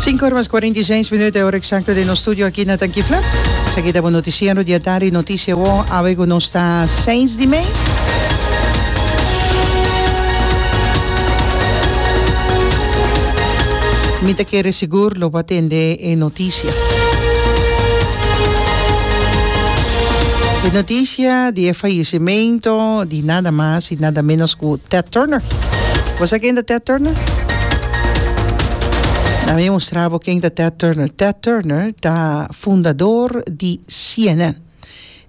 Sinku ora mas kuarenta i seis minut e ora eksakto den nos studio aki na Tanchifla. Esaki ta bo notisiero di atardi, notisia awor awe ku nos ta seis di mei. Mi ta kere sigur lo bo a tende e notisia. E notisia di e fayesimentu di. y nada mas y nada menos cu Ted Turner. Bo sa ken ta Ted Turner? Na mi mostra bo ken ta Ted Turner. Ted Turner ta fundador di CNN.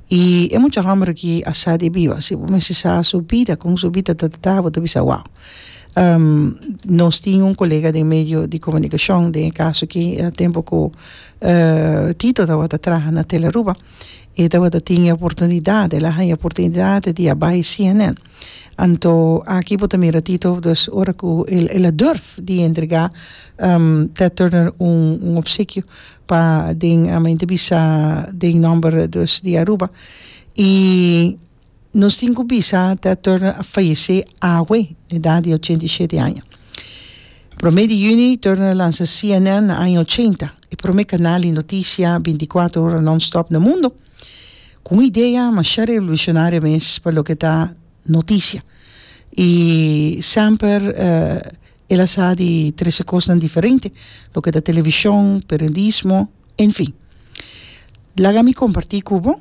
Y e mucha homber aki a sa di biba. Si bo mester sa su bida, con su bida ta ta ta, bo ta bisa wow. Um, nos tin un colega den medio di comunicacion, den e caso aki, e tempo cu, uh, Tito tabata traha na Telearuba. e tabata tin e oportunidat el a haña oportunidat di a bai cnn anto aki bo ta mira tito dus ora ku el a durf di entrega Ted Turner un opsikio pa den a entrebista den nomber di Aruba i Nos tin cu bisa te a torna a fayece awe na edad di ochenta i shete aña. Prome di juni torna a lansa cnn na aña ochenta, e prome canal di noticia binticuatro ora non-stop na mundo, cu un idea masha revolucionaria mes pa loke ta noticia. Y semper el a sa di trece cosnan diferente, loke ta television, periodismo, en fin. Laga mi comparti cu bo.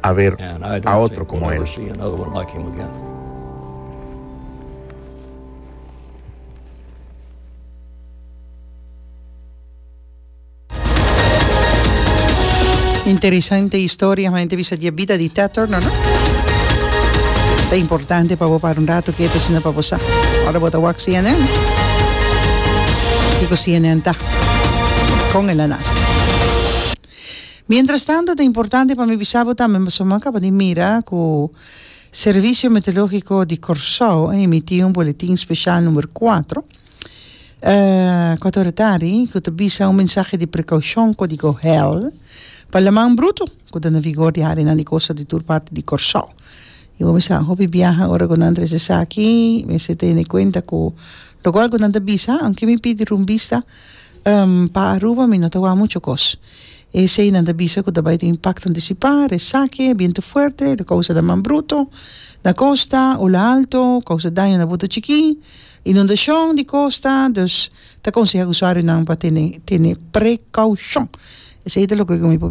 haber a otro como el. Interesante historia ha hende bisa di e bida di Theater no no ta importante pa bo para un rato ketu asina pa bo sa ora bo ta wak CNN kiko CNN ta kon el a nace. Mientrastanto ta importante pa mi bisa bo tambe pasobra mi a kaba di mira ku Servicio Meteológico di Kòrsou a emití un boletin spesial numero kuatro kòt ora tardi ku ta bisa un mensahe di prekoushon kódigo hel pa laman bruto ku ta na vigor di área nan di kosta di tur parti di Kòrsou. I bo mester a hopi biaha ora ku nan tres esaki mester tene kuenta ku loke algu nan ta bisa aunke mi pidi rumbista. Um, pa Aruba mi no ta wak mucho kos. Esei nan ta bisa ku ta bai tin impakto antisipá, resake, bientu fuerte, lo kousa daman bruto na kosta, ola alto, kousa daño na buta chikí, inundashon di kosta, dus ta konsehá usuarionan pa tene tene prekoushon. Esei ta loke ku mi por.